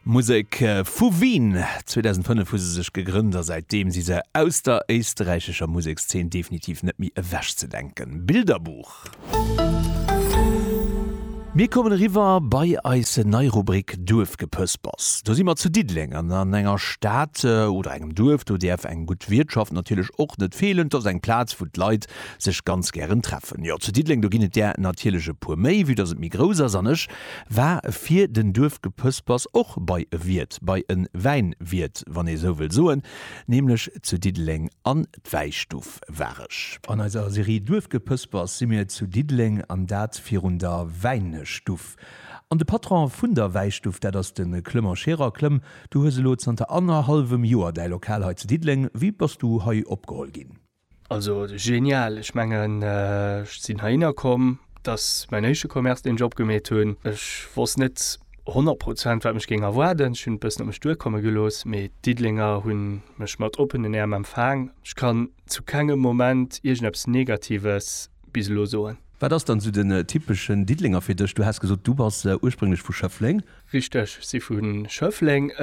Musek vu Wien. 2005 hu se sech gegrënnt a säitdeem si se aus der éisterräichescher Musekszeen definitiv net méi ewech ze denken. Bilderbuch. Mir kommen eriwwer bei eis nei Rubrik Duerfgepëspers. Do si mer zu Diddeleng an an enger Stad oder engem Duerf, do däerf eng gutt Wiertschaft natierlech och net feelen. 't ass eng Plaz, wou d'Leit sech ganz gären treffen. Jo, zu Diddeleng, do ginn et där natierlech e puer méi, vue dass et méi grouss ass. An ech war fir den Duerfgepëspers och bei e Wiert, bei e Wäinwiert, wann ee sou wëll soen, nämlech zu Diddeleng an d'Wäistuff war ech. An eiser Serie Duerfgepëspers si mir zu Diddeleng, an dat virun der Wäinestuff. An de Patron vun der Wäistuff, dat ass de Clement Scherer. Clem, du hues elo zanter annerhallwem Joer däi Lokal hei zu Diddeleng. Wéi bass du hei opgeholl ginn? Also genial, ech mengen ech sinn heihinner komm, et ass mäin éischte Commerce deen ech opgemeet hunn. Ech wosst net 100 Prozent wat mech géing erwaarden, ech hunn et bëssen op mech duerkomme gelooss, mee d'Diddelenger hunn mech mat oppenen Äerm empfaang. Ech kann zu kengem Moment iergendeppes Negatives bis elo soen. Wat ass dann esou den typeschen Diddelenger fir dech? Du has gesot du bass ursprénglech vu Schëffleng. Richteg, ech si vu Schëffleng.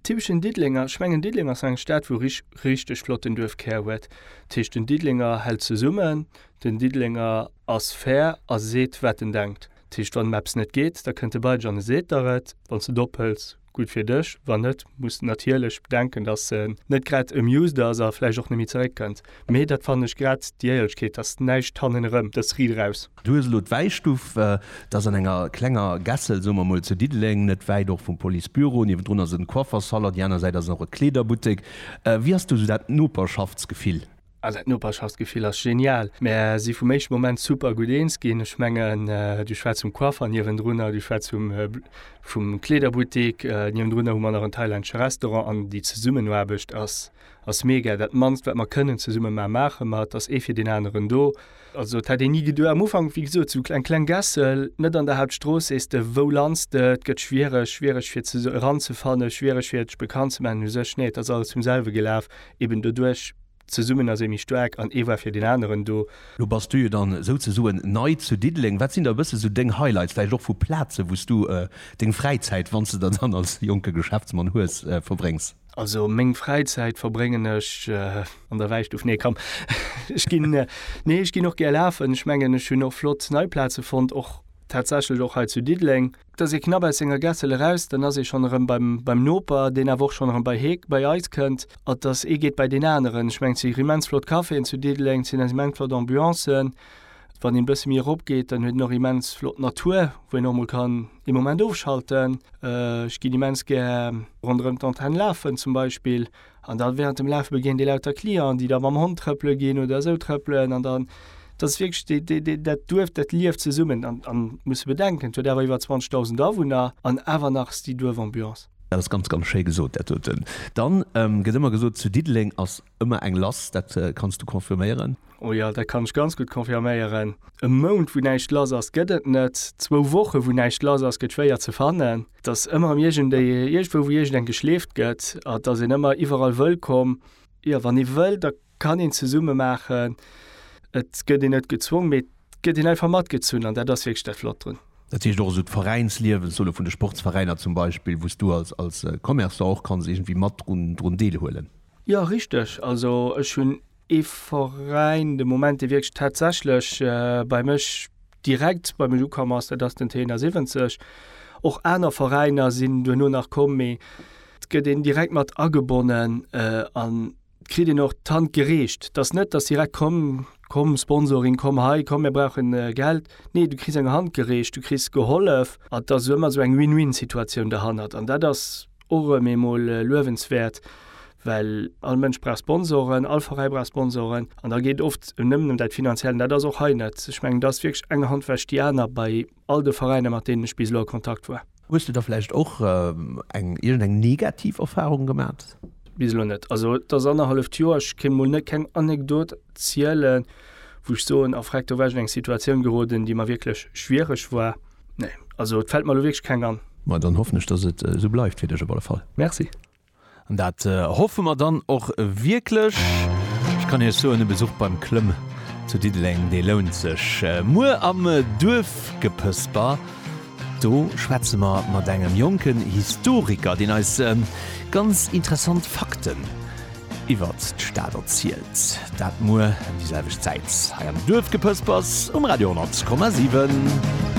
Typeschen Diddelenger, ech mengen Diddeleng ass eng Stad wou rich richteg flotten Duerfkär huet. Dat heescht den Diddelenger hält zesummen, den Diddelenger ass fair a seet wat en denkt. Dat heescht wann em eppes net geet, da kënnt e bei dech an e seet der et. Wann s et ophëls, gutt fir dech, wann net, muss de natierlech bedenken, datt en net grad amused ass a vläicht och net méi zeréck kënnt. Mee dat fannen ech grad déi Éierlechkeet, dass näischt hannen erëm, dass Ried eraus. Du hues elo d'Wäistuff, dat ass an enger klenger Gässel, soe mer mol zu Diddeleng, net wäit och vum Policebüro. Niewendrun ass en Coiffersalon, déi aner Säit ass och e Kleederbuttek. Wéi ass do esou dat Noperschaftsgefill? Ah, dat Noperschaftsgefill ass genial. Mär si vum éischte Moment super gutt eens ginn. Ech mengen, du schwätz vum Coiffer niewendrunner, du schwätz vum, vum Kleederbuttek niewendrunner, hu mer nach en thailännesche Restaurant an déi Zesummenaarbecht ass. ass mega, dat mannst wat mer kënnen zesumme maan, maache mer, et ass ee fir deen aneren do. Also et hätt een ni geduecht, am Ufank wéi gesot sou eng kleng Gässel net an der Hauptstrooss, sees de wou lands de, et gëtt schwiereg, schwiereg fir ze eranzefannen, schwiereg fir sech bekannt ze maachen u sech, nee et ass alles zum selwe gelaf, eben doduerch, zesummen ass ee méi staark an ee war fir deen aneren do. Lo bass du jo dann souzesoen nei zu Diddeleng, wat sinn da e bësse sou deng Highlights, vläicht och vu Plazen wou s du deng Fräizäit, wann s de der dann als jonke Geschäftsmann hues, verbréngs? Also meng Fräizäit verbréngen ech an der Wäistuff. Nee komm, ech ginn, nee ech ginn och gär lafen. Ech mengen ech hunn och flott nei Plaze fonnt, och tatsächlech och hei zu Diddeleng. Et ass ee knapp aus senger Gässel eraus, dann ass ee schonn erëm beim beim Noper, deen awer och schonn erëm bei hee bei eis kënnt. Et ass, ee geet bei deen aneren. Ech mengen et si immens flott Caféen zu Diddeleng, et sinn eis immens flott Ambiancen. Wann een e bësse méi eropgeet, dann huet een och immens flott Natur, wou een och mol kann, dee Moment ofschalten. Ech ginn immens gär ronderëm d'Antenne lafen zum Beispill. An da während dem Lafe begéint ee lauter Clienten, déi da mam Hond trëppele ginn oder esou trëppelen. An dann, dat ass wierklech dee, dee, dee, dat Duerf, dat lieft zesummen. An, an muss e bedenken, et huet awer iwwer 20.000 Awunner an awer nach ass déi Duerfambiance. Dat ass ganz, ganz schéi gesot, dat doten. Dann gëtt ëmmer gesot, zu Diddeleng ass ëmmer eng lass. Dat kanns du confirméieren? Oh jo, dat kann ech ganz gutt confirméieren. E Mount, wou näischt lass ass, gëtt et net. Zwou Woche, wou näischt lass ass, gëtt schwéier ze fannen. Et ass ëmmer erëm iergendwéi, iergendwou, wou iergendeng geschleeft gëtt. An et ass een ëmmer iwwerall wëllkomm. Jo, wann ee wëll, da kann een zesumme maachen. Et gëtt een net gezwongen, mee et gëtt een einfach matgezunn. An dat ass wierklech dat Flott drun. Dat heescht och esou d'Veräinsliewen, solle vun de Sportsveräiner zum Beispill, wou s du als, als Commerçant och kanns iergendwéi mat drun, drun deelhuelen? Jo, richteg. Also ech hunn Ee Veräin, de Moment, dee wierklech tatsächlech bei mech direkt bei mech ukomm ass, dat ass den TNA 70. Och aner Veräiner sinn duerno nach komm, mee et gëtt een direkt mat agebonnen an et kritt een och d'Hand gereecht. Et ass net, datt se direkt kommen, Komm Sponsoring, komm hei, komm mir brauchen Geld. Nee, du kriss eng Hand gereecht, du kriss gehollef an et ass ëmmer esou eng Win-Win-Situatioun derhannert an dat ass, och méi emol luewenswäert, well all Mënsch brauch Sponsoren, all Veräi brauch Sponsoren an da geet oft nëmmen ëm dat Finanziellen. Dat ass och hei net. Ech mengen, et ass wierklech eng Hand wäscht déi aner bei all de Veräiner, mat deenen ech bis elo a Kontakt war. Hues de da vläicht och eng iergendeng negativ Erfarung gemaach? Bis elo net. Also et ass annerhalleft Joer, ech kéint emol net keng Anekdot zielen, wou ech soen, a freck, do war ech an eng Situatioun geroden, déi mer wierklech schwiereg war. Nee, also et fällt mer lo wierklech keng an. Ma dann hoffen ech, dass et esou bleift fir dech op alle Fall. Merci. An dat hoffe mer dann och wierklech. Ech kann Iech soen, e Besuch beim Klëmm zu Diddeleng, dee lount sech. Muer am Duerfgepësper, do schwätze mer mat engem jonken Historiker, deen eis ganz interessant Fakten iwwert d'Stad erzielt. Dat muer ëm déi selwecht Zäit hei am Duerfgepëspers um Radio 10,7.